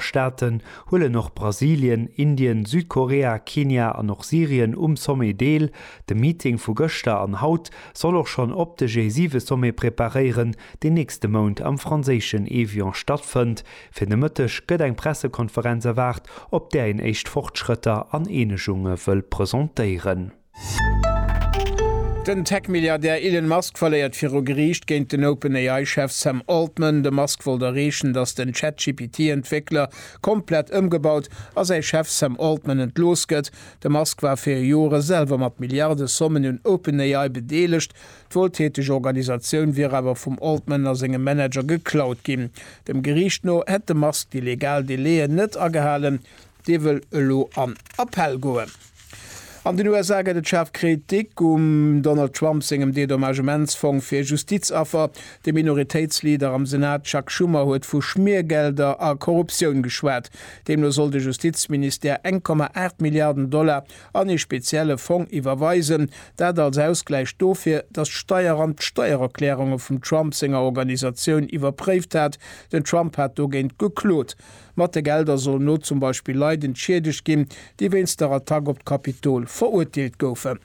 Staaten huelen och Brasilien, Indien, Südkorea, Kenia an och Syrien um Sommet deel. De Meeting vu gëschter an haut soll och schonn op de G7-Sommet preparéieren, deen nächste Mount am franséischen Évian stattfënnt. Fir de Mëtteg gëtt eng Pressekonferenz erwaart, op där een éischt Fortschrëtter an Eenegunge wëll presentéieren. Den Tech-Milliardär Elon Musk verléiert viru Geriicht géint den OpenAI-Chef Sam Altman. De Musk wollt erreechen, datt den ChatGPT-Entwéckler komplett ëmgebaut a säi Chef Sam Altman entlooss gëtt. De Musk war fir Jore selwer mat Milliardesommen un OpenAI bedeelegt. D'wueltäteg Organisatioun wier awer vum Altman a sengem Manager geklaut ginn. Dem Geriicht no hätt de Musk déi legal Délai'en net agehalen. Dee wëll elo an Appell goen. An den USA gëtt et schaarf Kritik um Donald Trump sengem Dedommagementsfong fir Justizaffer. De Minoritéitsleader am Senat Chuck Schumer huet vu Schmiergelder a Korruptioun geschwat. Deemno soll de Justizministère eng Komma aacht Milliarden Dollar an ee spezielle Fong iwwerweisen. Dat als Ausgläich dofir, datt d'Steieramt d'Steiererklärunge vum Trump senger Organisatioun iwwerpréift hat. Den Trump hat dogéint geklot. Mat de Gelder sollen elo zum Beispill Leit entschiedegt ginn, déi wéinst der Attack op d'Kapitol verurteelt goufen.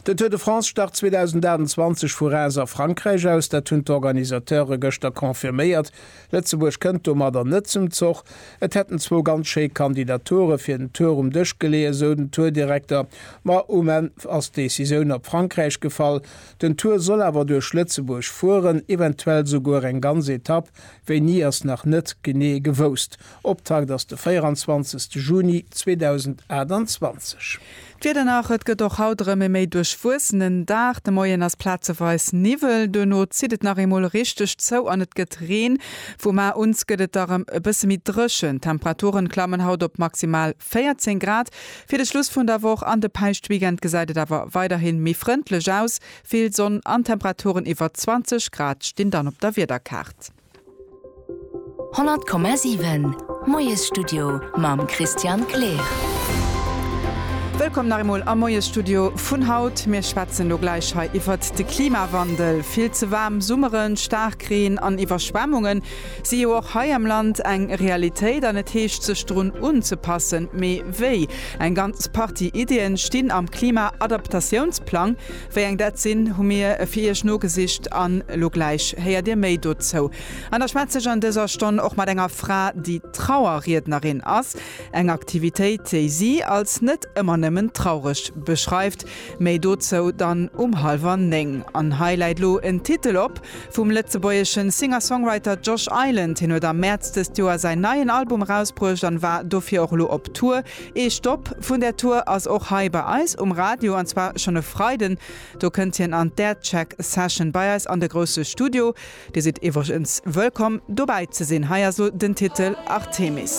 Den Tour de France start 2028 vu Reims a Frankräich aus. Dat hunn d'Organisateure gëschter confirméiert. Lëtzebuerg kënnt domadder net zum Zoch. Et hätten zwou ganz schéi Kandidature fir den Tour um Dësch geleeë, sou den Tour-Direkter. Ma um Enn ass d'Decisioun op Frankräich gefall. Den Tour soll awer duerch Lëtzebuerg fueren, eventuell souguer eng ganz Etapp. Wéini ass nach net genee gewousst. Optakt ass de 24 Juni 2028. D'Wieder nach, Et gëtt och haut erëm e méi duerchwuessenen Dag. De Moien ass plazeweis Niwwel, duerno zitt et nach eemol richteg zou an et gëtt Reen. Vum Mar un gëtt et da rem e bësse méi dréchen. D'Temperaturen klammen haut op maximal 14 Grad fir de Schluss vun der Woch. An de Päischtweekend gesäit et awer weiderhin méi frëndlech aus. Vill Sonn an Temperaturen iwwer 20 Grad stinn dann op der Wiederkaart. 100,7 Moiesstudio mam Christian Kleer. Wëllkomm nach eemol am Moiesstudio vun haut. Mir schwätzen elo gläich hei iwwert de Klimawandel. Vill ze waarm Summeren, Staarkreen an Iwwerschwemmunge si jo och hei am Land eng Realitéit an et heescht sech drun unzepassen. Mee wéi? Eng ganz Partie Iddien stinn am Klima-Adaptatiounsplang. Wéi eng dat sinn, hu mir fir Iech nogesicht an elo gläich héiert Dir méi dozou. An da schwätze ech an dëser Stonn och mat enger Fra, déi Trauerriednerin ass, eng Aktivitéit, déi si als net ëmmer nëmmen traureg beschreift. Méi dozou dann um hallwer néng. An hei läit lo en Titel op vum lëtzebuergesche Singer-Songwriter Josh Island. Hien huet am Mäerz dëst Joer säin neien Album erausbruecht an war dofir och lo op Tour. Ee Stopp vun där Tour ass och hei bei eis um Radio, an zwar schonn e Freiden. Do kënnt hien an d'Aircheck Session bei eis an de grousse Studio. Dir sidd iwwregens wëllkomm dobäi ze sinn. Hei also den Titel Artemis.